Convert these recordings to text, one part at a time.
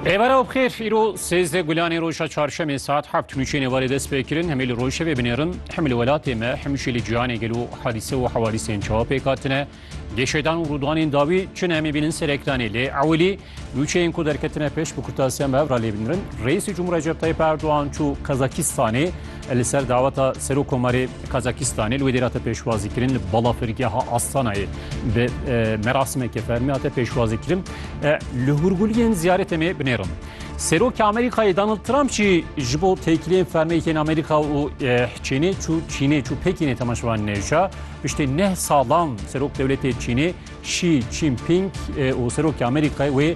Êvara bixêr îro sêzdeh gulanê roja çarşemê saet heft nûçê nêvarê dest pê kirin hemê li rojevê binêrin hem li welatê me hem jî li cîhanê gelo hadîse û hewadîsên çawa pêk hatine gêşedan û rûdanên dawî çin em ê bînin ser ekranê lê ewilî nûçeyên ku derketine pêş bi kurtasiya me hev ra lê binirin Rêîsê Cumhur Recep Tayyip Erdogan çû Kazakistanê Li ser daweta Serokomarê Kazakistanê li wê dêrate pêşwazî kirin li balafirgeha Astanayê bi merasimeke fermî hate pêşwazî kirin. Li hûrguliyên ziyaretê me binêrin. Serokê Amerîkayê Donald Trump jî ji bo têkiliyên fermeyê yên Amerîka û Çînê çû Çînê çû Pekînê temaşevanê nêja. Piştî neh salan serok dewletê Çînê Xi Jinping û Serokê Amerîkayê wê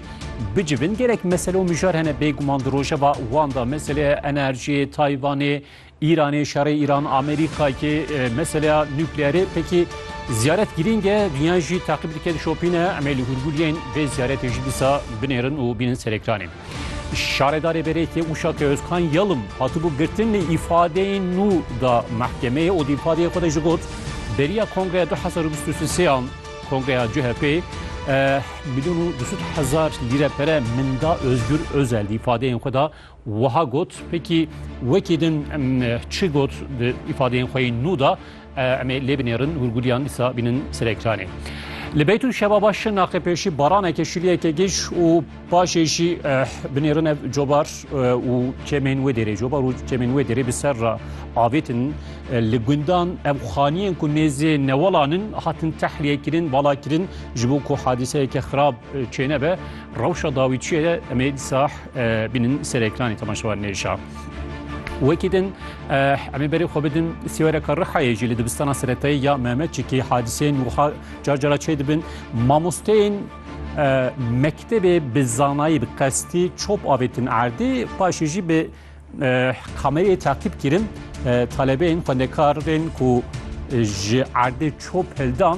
bicivin gelek mesele û mijar hene bêguman di rojeva wan de meseleya enerjiyê, Tayvanê, Îranê, şerê Îran, Amerîkayê, meseleya nukleerê pekî ziyaret girîng e, dûnya jî teqîb dike dişopîne. Em ê li hûrgûliyên vê ziyaretê jî dîsa binêrin û bînin ser ekranê. Şaredarê Berêkê Uşak Ozkan Yalım hatibû girtin lê îfadeyên nû da mehkemeyê û di îfadeyê xwe de jî got, Beriya Kongreya du hezar û bîst û sê ya Kongreya CHP'ê milyon û du sed hezar lîre pere min da Ozgur Ozel di îfadeyên xwe de wiha got, pêkî wekî din çi got di îfadeyên xwe yên nû de, Em ê lê binêrin hûrgûliyan îsa bînin ser ekranê. Li beyt û şebaba şirnaqê pêşî baraneke şiliyeke giş û paşê jî binêrin ev cobar û çemên wê dêrê cobar û çemên wê dêrê bi ser re avêtin li gundan ev xaniyên ku nêzê newalanin hatin tehliyê kirin bala kirin ji bo ku hadîseyeke xirab çênebe rewşa dawî çiye em ê dîsa bînin ser ekranê temaşewan nêşa. Wekî din Em ê berê xwe bidin sêwereke Rihayê jî li dibistana seretayî ya Mehmetçikê hadiseyên wiha car cara çê dibin. Mamosteyên mektebê bi zanayî bi qestî çop avêtin erdê paşê jî bi kamereyê takîb kirin talebeyên xwendekarên ku ji erdê çop hildan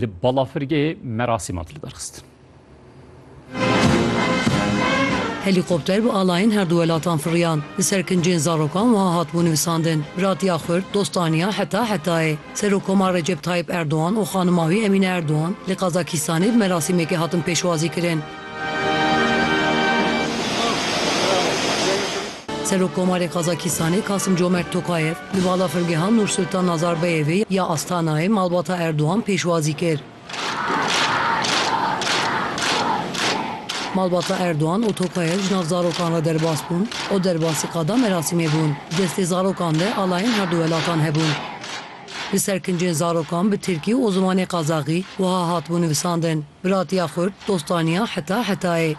Li balafirgehê merasîman tê lidarxistin. Helîkopter bi alayên herdu welatan firiyan. Li ser kincên zarokan wiha hatibû nivisandin, Biratiya xurt, dostaniya heta hetayê. Serokkomar Recep Tayyîp Erdogan û xanima wî Emîne Erdogan li Qazakîstanê bi merasîmekê hatin pêşwazîkirin. Serokkomarê Kazakîstanê Kasimcomert Tokayev li balafirgeha Nursultan Nazarbayevê ya Astanayê malbata Erdogan pêşwazî kir. Malbata Erdogan û Tokayev ji nav zarokan re derbas bûn û derbasî qada merasîmê bûn. Di destê zarokan de alayên herdu welatan hebûn. Li ser kincên zarokan bi tirkî û zimanê qazaxî wiha hatibû nivisandin, Biratiya xurt, dostaniya heta hetayê.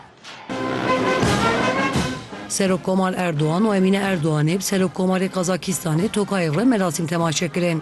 Serok Komal Erdogan û Emîne Erdoganê bi Serok Komarê Qazakîstanê Tokayê re merasîm temaşe kirin.